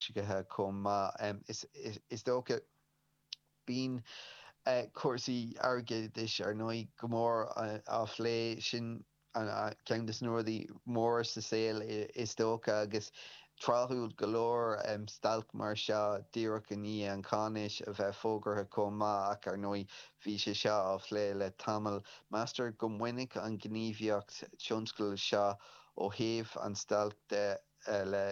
scithe chomh maith. Is dócha bíonn cúrsaí airgeadais, ar ndóigh, go mór á phlé. Sin ceann de na rudaí móra sa saol is dócha agus tráthúil go leor stailc mar seo díreach i ndiaidh an cháinaisnéis a bheith fógartha chomh maith ach, ar ndóigh, bhí sé seo á phlé le tamall. Meastar go mbainfidh an ghníomhaíocht tionscail seo ó thaobh an stailc de le.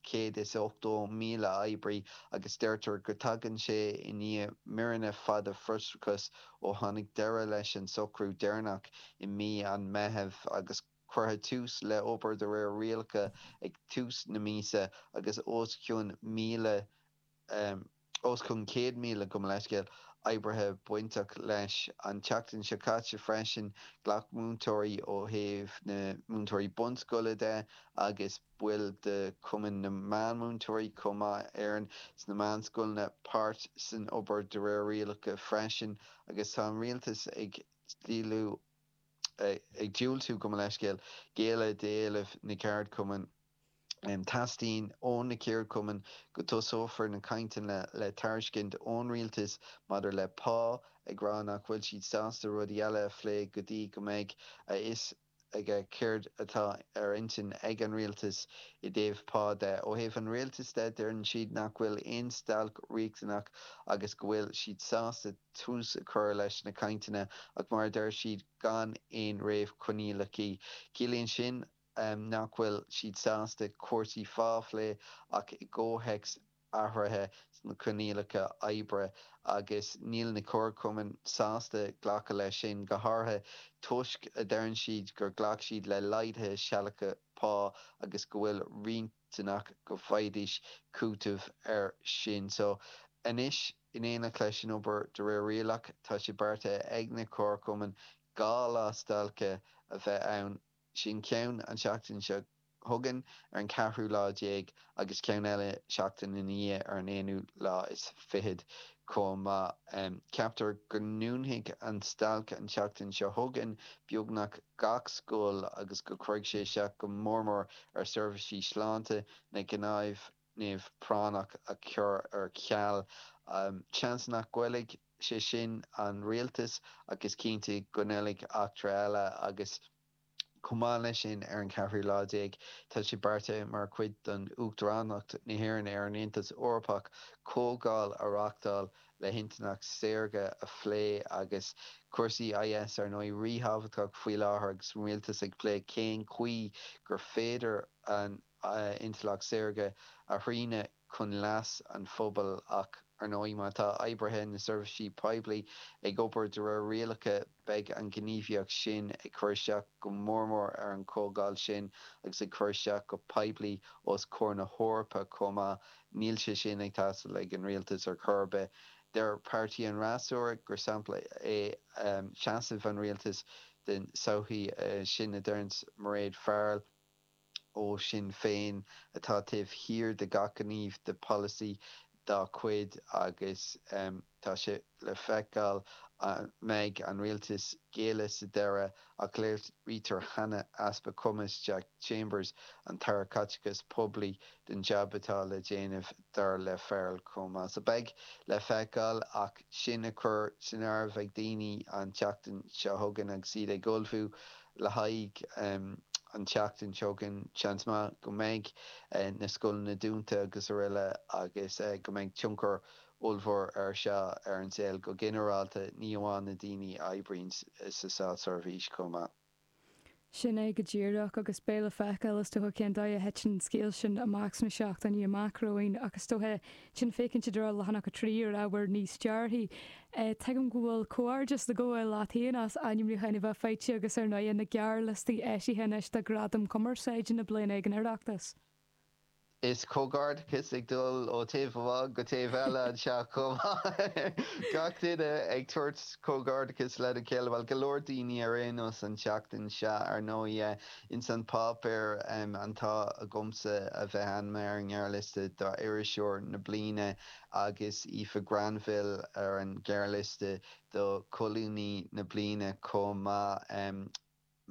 180,000 oibrí agus deirtear go dtagann sé i ndiaidh míonna fada frustrachais ó tháinig deireadh leis an socrú deireanach i mí an Meitheamh agus cuireadh tús le obair de réir rialacha ag tús na míosa agus os cionn 1,000 Os cionn 100,000, gabh mo leithscéal, oibrithe bainteach leis. An tseachtain seo caite freisin, ghlac múinteoirí ó thaobh na múinteoirí bunscoile de agus baill de Chumann na Meánmhúinteoirí chomh maith, Éireann, sna meánscoileanna páirt san obair de réir rialacha freisin. Agus tá an rialtas ag diúltú, gabh mo leithscéal, géilleadh d'éilimh na gceardchumann. Teastaíonn ó na ceardchumainn go dtosófar na cainteanna le tairiscint ón rialtas maidir le pá, ag rá nach bhfuil siad sásta rudaí eile a phlé go dtí go mbeidh a fhios aige céard atá ar intinn ag an rialtas i dtaobh pá de. Ó thaobh an rialtais de, deireann siad nach bhfuil aon stailc riachtanach agus go bhfuil siad sásta tús a chur leis na cainteanna ach mar a deir siad gan aon réamhchoinníollachaí. Ciallaíonn sin, nach bhfuil siad sásta cúrsaí phá a phlé ach i gcomhthéacs athruithe sna coinníollacha oibre agus níl na comharchumainn sásta glacadh leis sin, go háirithe toisc, a deireann siad, gur ghlac siad le laghduithe sealadacha pá agus go bhfuil riachtanach go bhfaighidís cúiteamh air sin. So, anois, in éineacht leis an obair de réir rialach, tá sé beartaithe ag na comharchumainn dhá lá stailce a bheith ann, Sin ceann an tseachtain seo chugainn ar an ceathrú lá déag agus ceann eile seachtain ina dhiaidh ar an aonú lá is fichead chomh maith. Ceaptar go ndúnfaidh an stailc an tseachtain seo chugainn beagnach gach scoil agus go gcuirfidh sé isteach go mór mór ar seirbhísí sláinte na neamhphráinneach a chur ar ceal. Seans nach ngoillfidh. sé sin an rialtas agus cinnte go ngoillfidh eachtra eile agus chomh maith leis sin, ar an ceathrú lá déag, tá sé beartaithe mar chuid den Uachtaránacht na hÉireann ar an Aontas Eorpach comhdháil a reachtáil le hintleacht saorga a phlé agus cúrsaí IS ar ndóigh ríthábhachtach faoi láthair agus an rialtas ag plé cén chaoi gur féidir an a intleacht saorga a shrianadh chun leas an phobail ach, ar ndóigh, má tá oibrithe na seirbhísí poiblí ag obair de réir rialacha beidh an ghníomhaíocht sin ag cur isteach go mór mór ar an chomhdháil sin agus ag cur isteach go poiblí os comhair na hEorpa chomh maith. Níl sé sin ag teastáil ag an rialtas ar chor ar bith. Deir páirtithe an fhreasúra gur sampla é seasamh an rialtais den tsochaí sin a deireanns Mairéad Farrell. ó Sinn Féin atá taobh thiar de gach gníomh de pholasaí dá cuid agus tá sé le feiceáil an mbeidh an rialtas ag géilleadh sa deireadh ach léirítear cheana easpa cumais Jack Chambers, an tAire Caiteachais Poiblí, don jab atá le déanamh. Ar ndóigh, Feargal chomh maith is a bheidh le feiceáil ach sin á chur san áireamh ag daoine an tseachtain seo chugainn agus iad ag ullmhú le haghaidh an tseachtain seo chugainn, seans maith go mbeidh na scoileanna dúnta agus aroile agus go mbeidh tionchar ollmhór air seo ar an saol go ginearálta, ní amháin na daoine a oibríonn sa státseirbhís chomh maith. Sin é go díreach, agus beidh le feiceáil is dóiche cén dóigh a dtiteann an scéal sin amach sna seachtainí amach romhainn ach is dóiche, sin féachaint i dtreo leathanach a trí ar ábhar níos dearfaí. Tuigim go bhfuil comhghairdeas le gabháil leat féin as ainmniúchán a bheith faighte agus ar ndóighe, na gearrliostaí eisithe anois do Ghradaim Chumarsáide na bliana ag an Oireachtas. Is comhghairdeachas ag dul ó taobh amháin go taobh eile anseo chomh maith. Gach duine ag tabhairt comhghairdeachas lena chéile, bhuel, go leor daoine ar aon nós an tseachtain seo ar ndóigh. Ins an páipéar an t-ádh agamsa a bheith ainmnithe ar an ngearrliosta do Iriseoir na Bliana agus Aoife Granville ar an ngearrliosta do Colúnaí na Bliana chomh maith.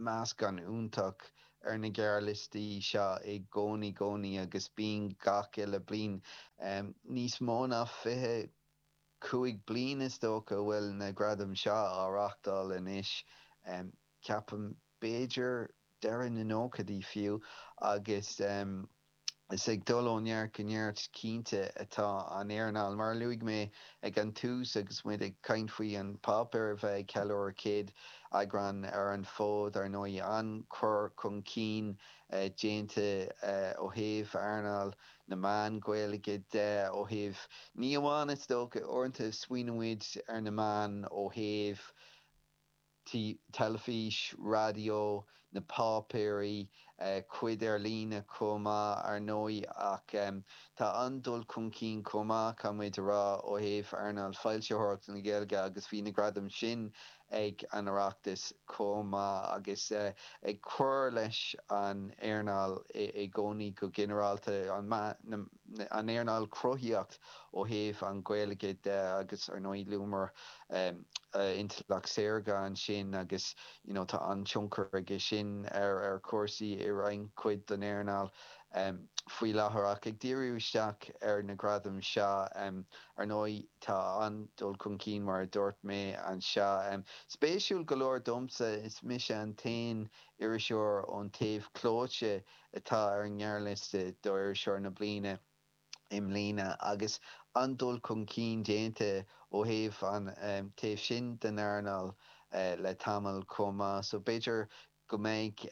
meascán iontach ar na gearrliostaí seo i gcónaí gcónaí agus bíonn gach uile bliain. Níos mó ná fiche cúig bliain is dócha a bhfuil na gradaim seo á reáchtáil anois, ceapaim. B'fhéidir deireadh na nóchaidí fiú agus is ag dul ó neart go neart cinnte atá an earnáil. Mar a luaigh mé ag an tús agus muid ag caint faoi An Páipéar a bheith ag ceiliúradh 100 eagrán ar an bhfód, ar ndóigh, an-chur chun cinn déanta ó thaobh earnáil na meán Gaeilge de, ó thaobh ní amháin, is dócha, uaireanta smaoiníonn muid ar na meáin ó thaobh. teilifís, raidió, na páipéirí, cuid ar líne chomh maith, ar ndóigh, ach tá an-dul chun cinn chomh maith, caithfidh muid a rá, ó thaobh earnáil foilsitheoireachta na Gaeilge agus bhí na gradaim sin ag an Oireachtas chomh maith agus ag cur leis an earnáil i gcónaí go ginearálta, an méid a. an earnáil cruthaíocht ó thaobh an Gaeilge de agus ar ndóigh luamar intleacht saorga ansin agus you know tá an-tionchar aige sin ar chúrsaí i roinnt cuid don earnáil faoi láthair ach ag díriú isteach ar na gradaim seo ar ndóigh tá an-dul chun cinn mar a dúirt mé anseo. Spéisiúil go leor domsa is mise an t-aon iriseoir ón taobh clóite atá ar an ngearrliosta do Iriseoir na Bliana i mbliana agus an-dul chun cinn déanta ó thaobh an taobh sin den earnáil le tamall chomh maith so b'fhéidir go mbeidh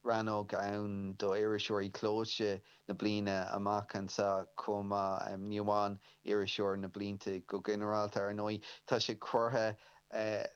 rannóg ann do Iriseoirí Clóite na Bliana amach anseo chomh maith, ní amháin Iriseoir na Bliana go ginearálta. Ar ndóigh tá sé curtha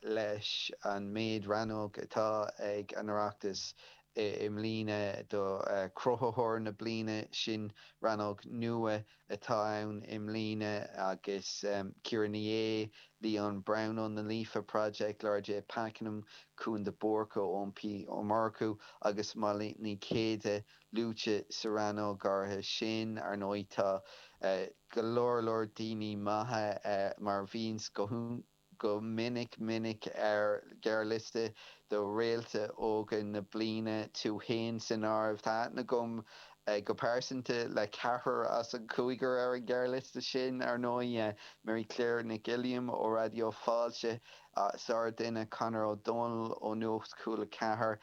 leis an méid rannóg atá ag an Oireachtas I mbliana do Cruthaitheoir na Bliana, sin rannóg nua atá ann i mbliana agus Ciara Ní É, Lia Nic an Bhrógáin Líofa Líofa Project, Laura J Pakenham, Cúán de Búrca, Eoin P Ó Murchú agus Molly Nic Céile luaite sa rannóg áirithe sin. Ar ndóigh tá go leor leor daoine maithe mar bhíonn go go minic minic ar ghearrliosta do réalta óga na bliana tú fhéin san áireamh. Tá aithne agam go pearsanta ar ceathrar as an gcúigear ar an ghearrliosta sin, ar ndóigh, Mary Claire Nic Uilliam ó Raidió Fáilte, sár duine, Conor Ó Domhnaill ó Nuacht Cúil 4,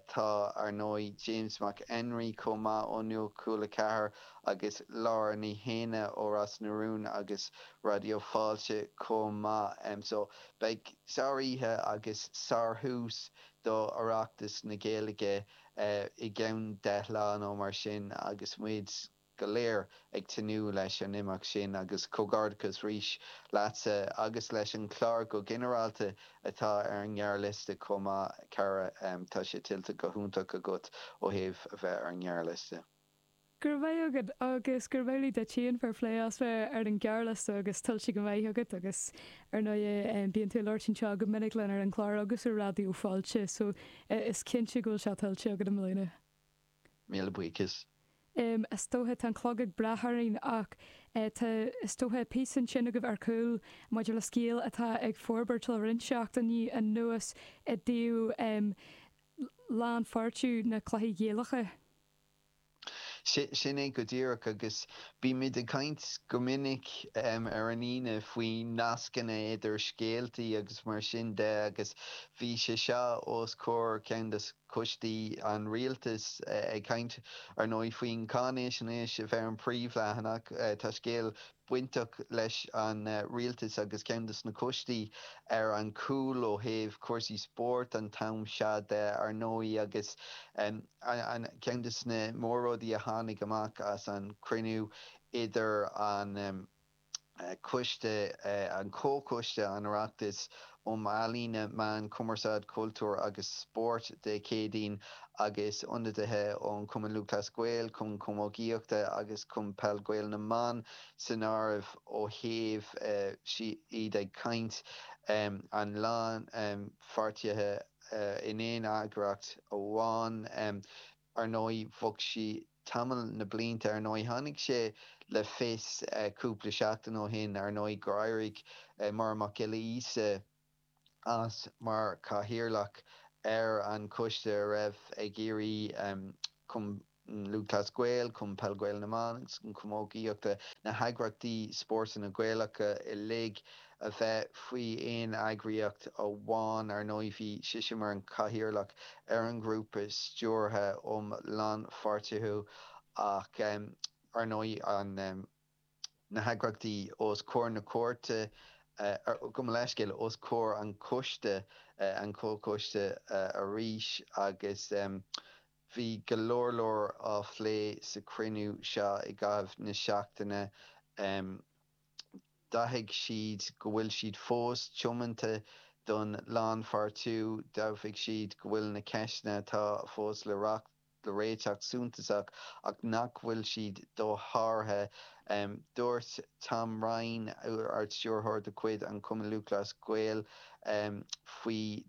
tá, ar ndóigh, James Mac Enrí chomh maith ó Nuacht Cúil 4, agus Laura Ní Shéanna ó Ros na Rún agus Raidió Fáilte chomh maith. So beidh sár oíche agus sár thús do Oireachtas na Gaeilge i gceann deich lá nó mar sin agus muid go léir ag tnúth leis an imeacht sin agus comhghairdeachas arís leatsa agus leis an clár go ginearálta atá ar an ngearrliosta chomh maith cara, tá sé tuillte go hiontach agat ó thaobh a bheith ar an ngearrliosta. Go raibh maith agat agus gurb amhlaidh duit. Agus fair play as bheith ar an ghearrliosta agus tuillte go maith agat agus ar ndóighe bíonn tú ag labhairt anseo go minic linn ar an gclár agus ar Raidió Fáilte so is cinnte go bhfuil sé tuillte agat i mbliana. Míle buíochas. Is dócha tá an clog ag breith orainn ach tá is dócha píosa ansin agaibh ar cúl maidir le scéal atá ag forbairt le roinnt seachtainí anuas i dtaobh lánpháirtiú na cluichí Gaelacha. Sin é go díreach, agus bímid ag caint go minic ar an Aoine faoi nascanna idir scéaltaí agus mar sin de agus bhí sé seo os comhair ceann de choistí an rialtais ag caint, ar ndóigh, faoin cháinaisnéis a bheith ar an bpríomhleathanach. Tá scéal bainteach leis an rialtas agus ceann de na coistí ar an gcúl ó thaobh cúrsaí spóirt an t-am seo de, ar ndóigh, agus. Ceann de na mór-rudaí a tháinig amach as an chruinniú idir an coiste, an Comhchoiste, an Oireachtais um Ealaíona, Meáin, Cumarsáid, Cultúr agus Spórt, Dé Céadaoin, agus ionadaithe ón Chumann Lúthchleas Gael, Cumann Camógaíochta agus Cumann Peil Gael na mBan san áireamh, ó thaobh, iad ag caint, an lánpháirtithe, in aon eagraíocht amháin. Ar ndóigh, bhog sí tamall na blianta. Ar ndóigh, tháinig sé le fios cúpla seachtain ó shin, ar ndóigh, gur éirigh Máire Mhic Giolla Íosa as mar Chathaoirleach ar an choiste a raibh ag iarraidh An Lúthchleas Gael, Cumann Peil Gael na mBan agus an Chamógaíochta, na heagraíochtaí spóirt Gaelacha uilig, a bheith faoi aon eagraíocht amháin. Ar ndóigh bhí sise mar an Cathaoirleach ar an ghrúpa stiúrtha um lánpháirtiú ach ar ndóigh na heagraíochtaí os comhair na cúirte, gabh mo leithscéal, os comhair an choiste, an comhchoiste arís agus. Bhí go leor leor á phlé sa chruinniú seo i gcaitheamh na seachtaine. D'admhaigh siad go bhfuil siad fós tiomanta don lánpháirtiú. D'admhaigh siad go bhfuil na ceisteanna atá fós le réiteach suntasach ach nach bhfuil siad dosháraithe. Dúirt Tom Ryan, Ard-Stiúrthóir de chuid an Chumainn Lúthchleas Gael faoi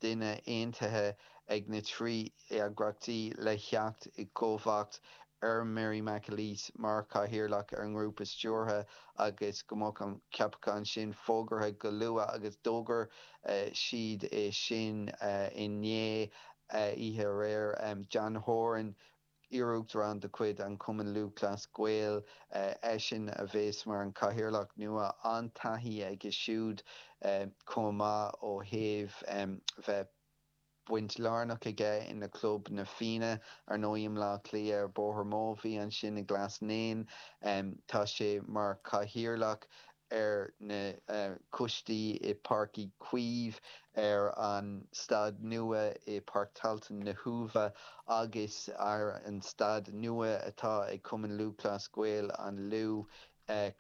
duine aontaithe ag na trí eagraíochtaí le theacht i gcomharbacht ar Mary McAleese mar Chathaoirleach ar an nGrúpa Stiúrtha agus go mbeadh an ceapachán sin fógartha go luath agus d'fhógair siad é sin inné, oíche aréir. John Horan, Iaruachtarán de chuid an Chumainn Lúthchleas Gael eisean a bheas mar an Cathaoirleach nua. An-taithí aige siúd chomh maith ó thaobh bheith baint lárnach aige ina chlub Na Fianna, ar ndóigh i mBleá Cliath ar Bhóthar Mobhí ansin i nGlas Naíon. Tá sé mar Chathaoirleach ar na coistí i Páirc Uí Chaoimh, ar an staid nua i Páirc Tailteann na hUaimhe agus ar an staid nua atá ag Cumann Lúthchleas Gael an Lú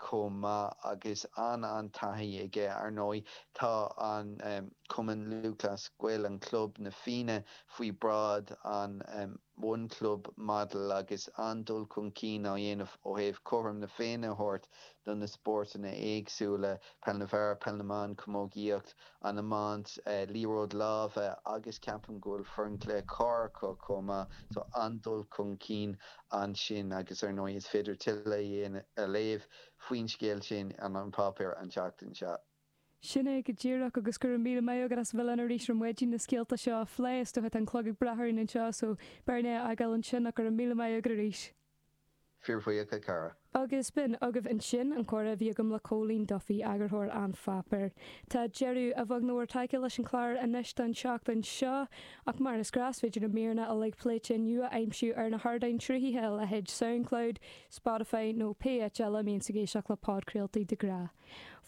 chomh maith agus an-an-taithí aige. Ar ndóigh tá an Cumann Lúthchleas Gael an club, na Fianna, faoi bhráid an One. One Club Model agus an-dul chun cinn á dhéanamh ó thaobh cothrom na Féinne a thabhairt do na spórtanna éagsúla, Peil na bhFear, Peil na mBan, Camógaíocht, an Iomáint, Liathróid Láimhe agus ceapaim go bhfuil Foireann Cluiche Corr acu chomh maith so an-dul chun cinn ansin agus ar ndóigh is féidir tuilleadh a léamh faoin scéal sin in An Páipéar an tseachtain seo. Sin é go díreach, agus go raibh míle maith agat as a bheith linn arís ar maidin leis na scéalta seo a phlé. Is dócha tá an clog ag breith orainn anseo, so b'fhearr dúinn é a fhágáil ansin, ach go raibh míle maith agat arís. Fíor-bhuíoch, a chara. Agus b'in agaibh ansin an comhrá a bhí agam le Cóilín Duffy, eagarthóir An Pháipéar. Tá deireadh, a bheag nó a mhór tagtha leis an chlár anois don tseachtain seo, ach mar is gnáth is féidir na míreanna uilig pléite inniu a aimsiú ar na hardáin sruthaithe, a leithéid Soundcloud, Spotify nó pé áit eile a mbíonn tú ag éisteacht le podchraoltaí de ghnáth.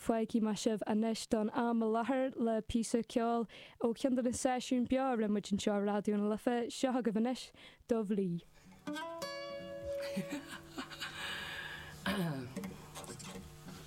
Fágfaidh mé sibh anois don am i láthair le píosa ceoil ó cheann de na seisiúin beo a rinne muid anseo i Raidió na Life, seo agaibh anois 'Dubh Lí'.